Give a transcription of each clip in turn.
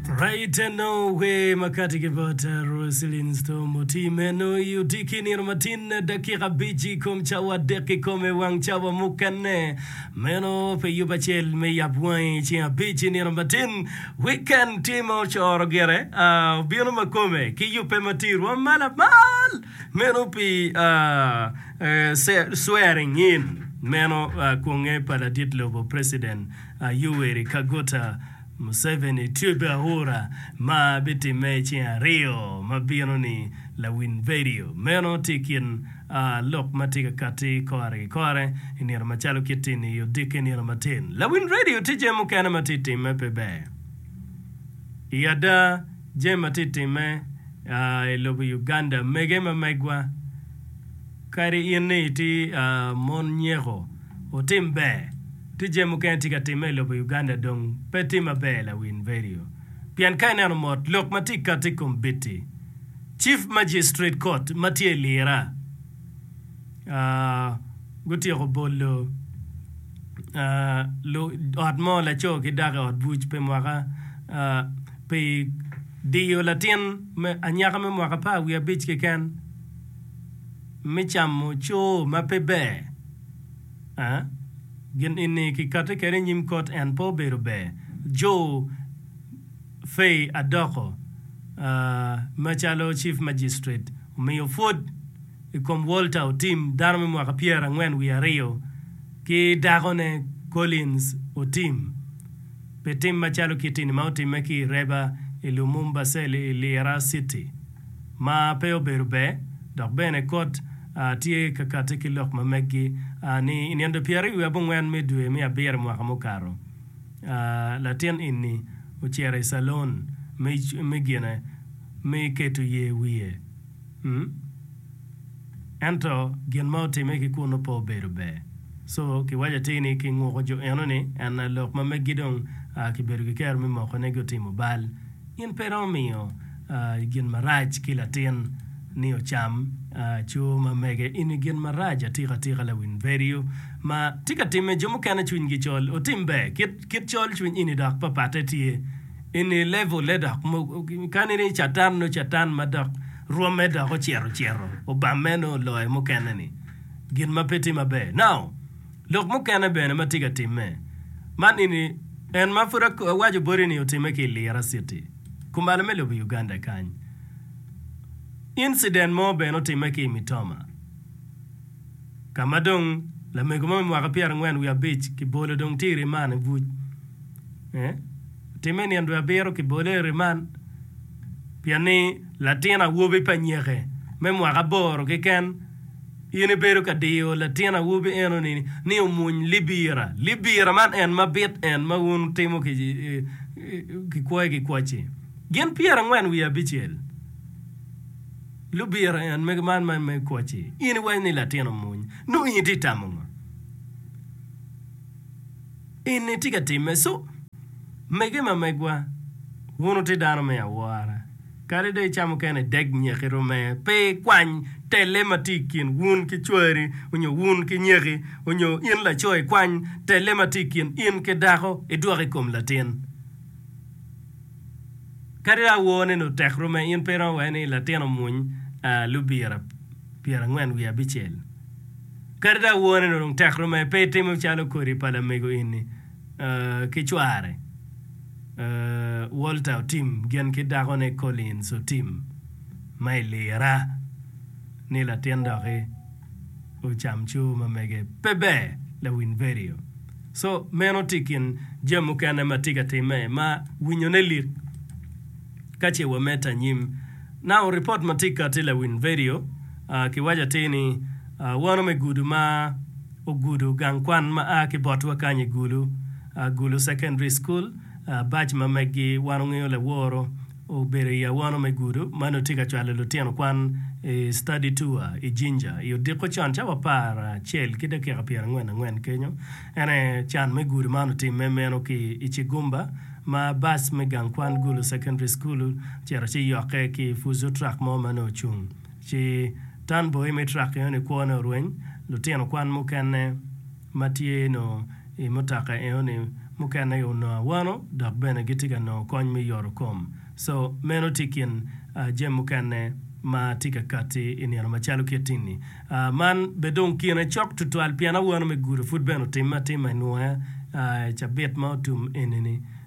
Rayita nongo wer makati ki bot Roselyn Storm otii meno i odiki nino matin dakika abic i kom cawa adek kikome wang cawa mukene meno pe yub acel me yab wangi i ceng abic i nino matin wiken tye ma ocoro gire aa obino makome ki yubbe matir wa ma lamal meno pi aa swearing in meno aa kwonge pa ladit lobo President aa Yoweri Kaguta Museveni tye bene aura ma bitimme i ceng aryo ma bino ni. Lawiny vedio meno tye i kin lok ma tye ka katti kore ki kore i nino macalo kitti ni odikke nino matin. Lawiny vedio tye jami mukene ma tye timme pe ber. I ada jami ma tye timme i lobo Uganda mege ma megwa kadi in ni itye mon nyeko otim ber. Ti jami mukene ti ka timme ilobo Uganda dong pe ti maber lawin vedio pien ka ineno mot lok ma ti kati ikom bitti chief magistrate court ma tye ilira gutyeko bolo ot mo laco ki dako iot buc pi mwaka pi diyo latin anyaka me mwaka apar wiye abic keken me camo coo ma pe ber. a gin eni kikati kede i nyim kot en pe obedo ber. Jo Fei Adoko a ma calo Chief Magistrate omiyo pwod i kom Walter Otim dano me mwaka pyera angwen wiye aryo ki dako ne Collins Otim pi tim macalo kiti ni ma otime ki i Reba i Lumumba Cell i Lira City. ma pe obedo ber, dok bene kot a tye ka kati ki lok ma meggi a ni i nino pyeraryo wiye abongwen me dwe me abiro mwaka mukato, a latin eni ocito i calon me me gine me keto ye wiye, mm ento gin ma otime ki kunu pe obedo ber, so ki waco atir ni ki nguko jo eno ni en a lok ma meggi dong a ki bedo ki kero me moko ne gi otimo bal. In pe iromo miyo gin marac ki latin ni ocam aco ma mege ini gin marac atika atika lawin vedio ma tye ka time jo mukene cwiny gi col otim ber kit kit col cwiny ini dok papate tye ini level ne dok kani ni catan nyo catan ma dok rwome dok ocito cito obame nyo oloyo mukene ni gin ma pe tye maber now Lok mukene bene ma tye ka timme ma nini en ma pud awaco boti ni otimme ki i Lira city, kumalo me lobo Uganda kany. Incident mo bene otimme ki i Mitoma ka ma dong lamego mo me mwaka pyera angwen wiye abic ki bolo dong tye i riman i buc eh otimme i nino dwe abiro ki bole i riman pien ni latin awobi pa nyeke me mwaka aboro keken In ibedo ka diyo latin awobi enoni ni omwony libira. Libira man en mabit en ma wun wutimo kikwoyo ki kwacci. Gin pyerangwen wiye abicel lubira en mege man ma me kwacci. In iwaco ni latin omwony. Nongo in itye ka tamo ngo? In itye ka timme? So, mege ma megwa, wun wutye dano me awora. Kadi dong icamo kene, deg nyeki rome. Pe ikwany telle ma tye i kin wun ki cwari, onyo wun ki nyeki, onyo in laco ikwany telle ma tye i kin in ki dako idwok i kom latin. Kadi dong awone ni otek rome, in pe iromo wene ni latin omuny lubira pyerangwen wiye abicel. Kadi dong awone ni dong tek rome, pe itimo calo kodi pa lamego ini. ki cware Walter otim gin ki dakone Collins otim ma i lira ni latin doki ocam coo ma mege pe ber lawiny vedio so meno tye ikin jami mukene ma tye ka time ma winyo ne lik ka ce wa medde anyim now report ma tye kati lawiny vedio ki waco atir ni wano me gudu ma ogudo gang kwan ma a ki botwa kany i Gulu, Gulu Secondary School, bac ma meggi wan ongeyo laworo obedo i awono me gudo ma nongo tye ka cwalo lutino kwan i study tour i Jinja i odiko con cawa apar acel ki dakika pyer angwen angwen kenyo. En aye can me gudo man otimme meno ki i Kigumba ma bac me gang kwan Gulu Secondary School ocito ci yokke ki Fuso truck mo ma nongo ocung Ci Tan Boy me trak enoni kwone orweny, lutino kwan mukene ma tye nongo i mutoka enoni mukene onongo awano dok bene gitye ka nongo kony me yoto kom. Co meno tye i kin jami mukene ma tye ka katti i nino macalo kit-ti-ni. Man bene dong kine cok tutwal pien awano me gudo pud bene otimme atima i nwoya i cabit ma otum enini.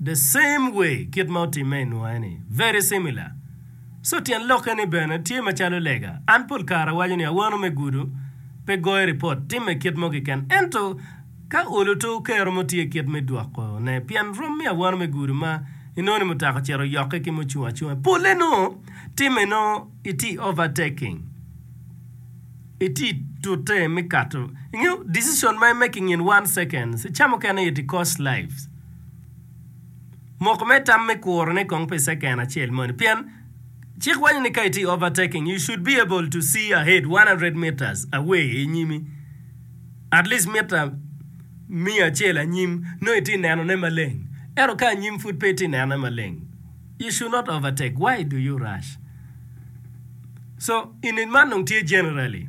The same way, kit ma otimme i Nua-ni, very similar. So tyen lokke ni bene tye macalo lega. An pol kare awaco ni awano me gudo pe goyo ripot, timme kit mo keken. Ento ka olo to okero mo tye kit me dwoko ne pien rom me awano me gudo ma inongo ni mutaka ocito oyokke ki mucung acunga. Pole nongo timme nongo iti overtaking, iti tute me kato, ingeyo decision ma imake in one seconds, ca mukene it cost lives. Moko me tam me kurone kong pi second acel moni pien cik wanyo ni ka itye overtaking you should be able to see ahead 100 metres away i nyimi at least mita miya acel anyim nongo itye neno ne maleng ento ka anyim pud pe itye neno ne maleng you should not overtake why do you rush so in man dong tye generally.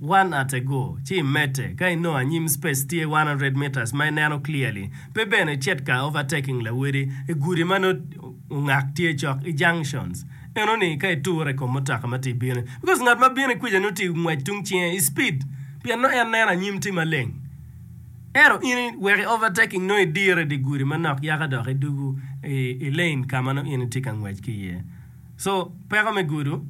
One ate go ci imedde ka inongo anyim space tye one hundred metres ma ineno clearly pe bene icit ka overtaking lawedi i gudi ma nongo ongak tye cok i junctions enoni ka iture i kom mutoka ma tye i bino because ngat ma bino i kwica nongo tye ngwec tung cinge i speed pien nongo en neno anyim tye maleng ento in iweko i overtaking nongo idire i di gudi manok yaka dok idugu i lane ka ma nongo in itye ka ngwec ki iye. So peko me gudo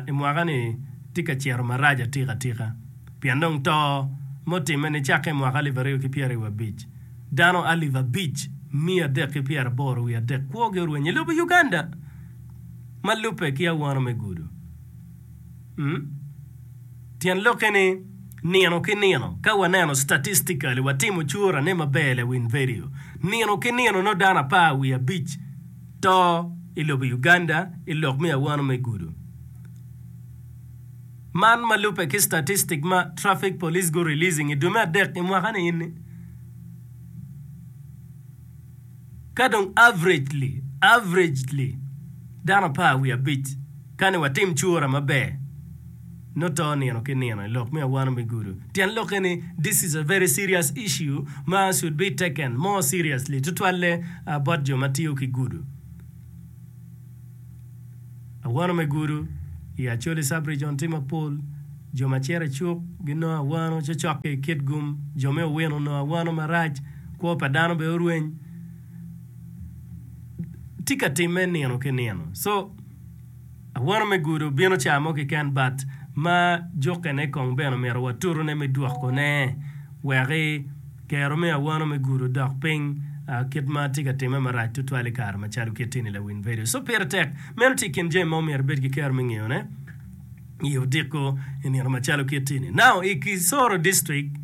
i mwaka ni tye ka cito marac atika atika pien dong to ma otimme ni cakke i mwaka alip aryo ki pyera i wa bic dano alip abic miya adek ki pyera aboro wiye adek kwo gi orwenyo i lobo Uganda ma lubbe ki awano me gudo. Tyen lokke ni nino ki nino ka wa neno statistically wa timo cura ne maber le win vedio nino ki nino nongo dano apar wiye abic To i lobo Uganda i lok me awano me gudo man ma lubbe ki statistic ma Traffic Police gu releasing i dwe me adek i mwaka ni eni, ka dong averagely, averagely, dano apar wiye abic kani watim cura maber. Noto nino ki nino i lok me awano me gudo. Tyen lokke ni, This is a very serious issue ma should be taken more seriously, tutwalle bot jo ma tiyo ki gudo. Awano me gudo i Acholi Sub-region tye mapol. Jo ma cito i cuk ginongo awano cocokke i kit gum. Jo me Owino onongo awano marac. Kwo pa dano bene orweny. Tye ka timme nino ki nino. So. Awano me gudo bino ca mo keken but ma jukkene kong bene omito watutone me dwokone weki kero me awano me gudo dok piny kit ma tye ka timme marac tutwal i kare macalo kit eni lawiny vedio. So pire tek. Meno tye i kin jami ma omyero ibed ki kero me ngeyone i odiko i nino macalo kit eni. Now i Kisoro District,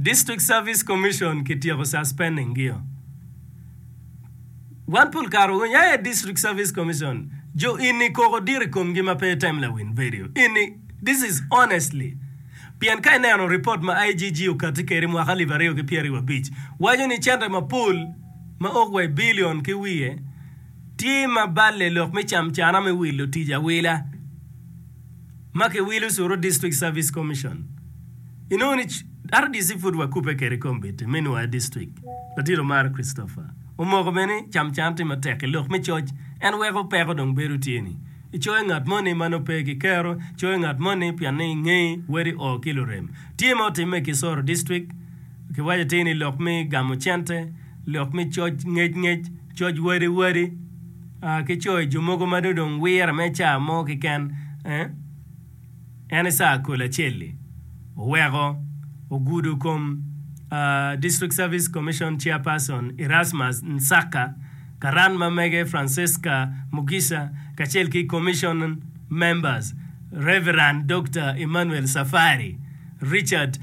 District Service Commission kityeko suspending gio. Wan pol kare winyo aye District Service Commission jo ini koko dit i komgi ma pe item lawin vedio ini, this is honestly pien ka ineno report ma IGG okati kedi mwaka alip aryo ki pyeraryo abic waco ni cente mapol ma ok wa i billion ki wiye tye ma balle lok me cam cana me wilo tic awila. ma kiwilo curu District Service Commission. Inongo ni RDC pud wakubbe kwede i komitti me nwoya district. Latin Omara Christopher omoko bene ni Camcan tye matek i lok me coc, en weko peko dong bedo tye ni icoyo ngat moni ma nongo pe kikero, coyo ngat moni pien ni ingeyi wedi oo ki lurem. Tye ma otimme i Kisoro District, kiwaco tye ni lok me gamo cente, lok me coc ngec ngec. Coc wadi wadi ki coyo jo mogo ma dong wire me caa mo kiken en caa kol acel-li oweko ogudo kom District Service Commission Chairperson Erasmus Nsaka, karan ma mege Francesca Mugisha kacel ki Commission members Rev. Dokta Emmanuel Safari, Richard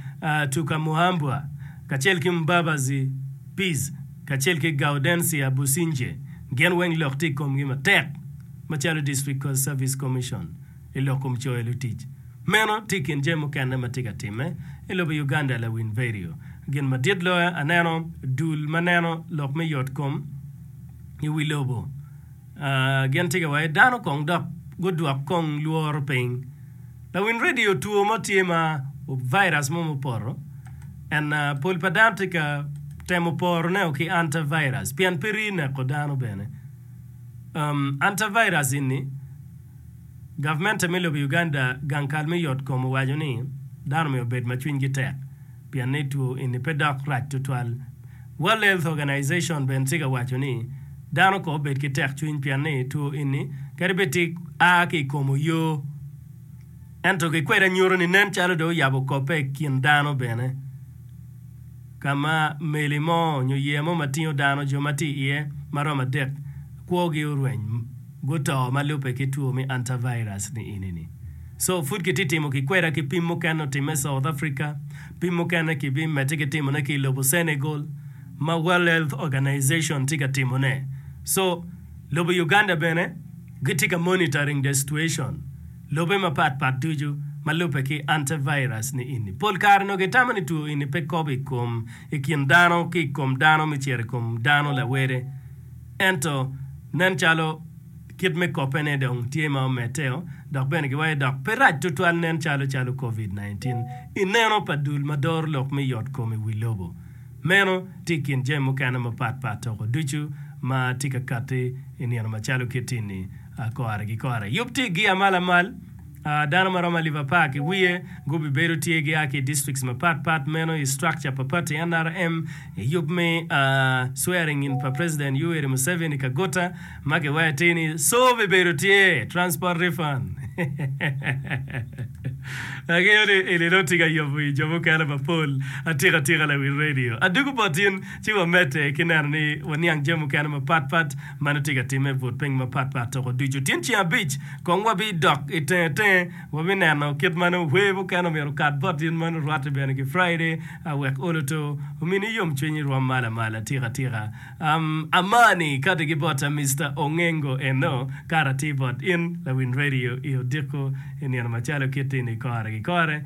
Tukamuhambwa kacel ki Mbabazi Peace. kacel ki Gaudencia Businge, gin weng lok tye i komgi matek macalo District Court Service Commission i lok kom coyo lutic. Meno tye i kin jami mukene ma tye ka timme i lobo Uganda Lawin Verio, Gin madit loyo aneno dul ma neno lok me yot kom i wi lobo. Gin tika wa i dano kong dok gudwok kong lworo piny? Lawiny radio two mo tye ma virus mo mupoto and pol pa dano tye ka temo poro ne o ki anti virus pien pe rii neko dano bene. Anti virus eni government me lobo Uganda gang kal me yot kom owaco ni dano myero obed ma cwiny gi tek. pien ni two eni pe dok rac tutwal. World Health Organization bene tika waco ni, Dano kong obed ki tekcwiny pien ni two eni kadi bed tika a ki i kom oyoo, ento kikwede nyuto ni nen calo dong oyabo kobbe i kin dano bene, ka ma meli mo nyo yeya mo ma tingo dano, jo ma tye iye ma romo adek, kwogi orweny. guto ma lubbe ki two me antavirus ni eni ni. So pud ki ti timo ki kweda ki pim mukene otimme South Africa, pim mukene ki bi mette ki timo ne ki ilobo Senegal ma World Health Organization ti ka timo ne. So lobo Uganda bene gi ti ka monitoring the situation lobe ma pat pat ducu ma lubbe ki antavirus ni eni. Pol kare nongo ki tamo ni two eni pe kobo ikom ikin dano ki ikom dano me cito ikom dano lawede. Ento, nen calo kit me koppene dong tye ma omedteo, dok bene giwaco dok pe rac tutwal nen calo calo Covid-19 i neno pa dul ma doro lok me yotkom i wi lobo. Meno tye i kin jami mukene mapatpat toko ducu ma tye ka katti i nino macalo kiti-ni kore ki kore. Yub tye gia ma lamal. Dano ma romo alip apar ki wiye gubibedo tye gia ki i districts mapat pat meno i structure pa pati NRM i yub me swearing in pa President Yoweri Museveni Kaguta ma kiwati ni Soo bibedo tye transport refund. Angeyo ni in inongo tye ka yobo wi jo mukene mapol atika tika lawi radio. Adwogo bot in ci wamedde ki neno ni waniang jami mukene mapat pat. Meno tye ka timme i but piny mapatpat toko ducu. Tyen ceng abic kong wabidok i tenge tenge, wabineno kit ma nongo wer mukene omyero okat bot in meno, rwatte bene ki Friday, a wek olo to omini yomcwiny irwom malo amalo atika atika. Am, Amani kati ki bot a Mister Ongengo eno, kato atir bot in lawiny radio i odiko i nino macalo kit-ti ni kore ki kore.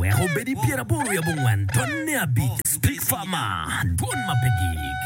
Wek obed i pyeraboro wi abongwen tonne abic, Spik Farmer, Dwon ma pe gik.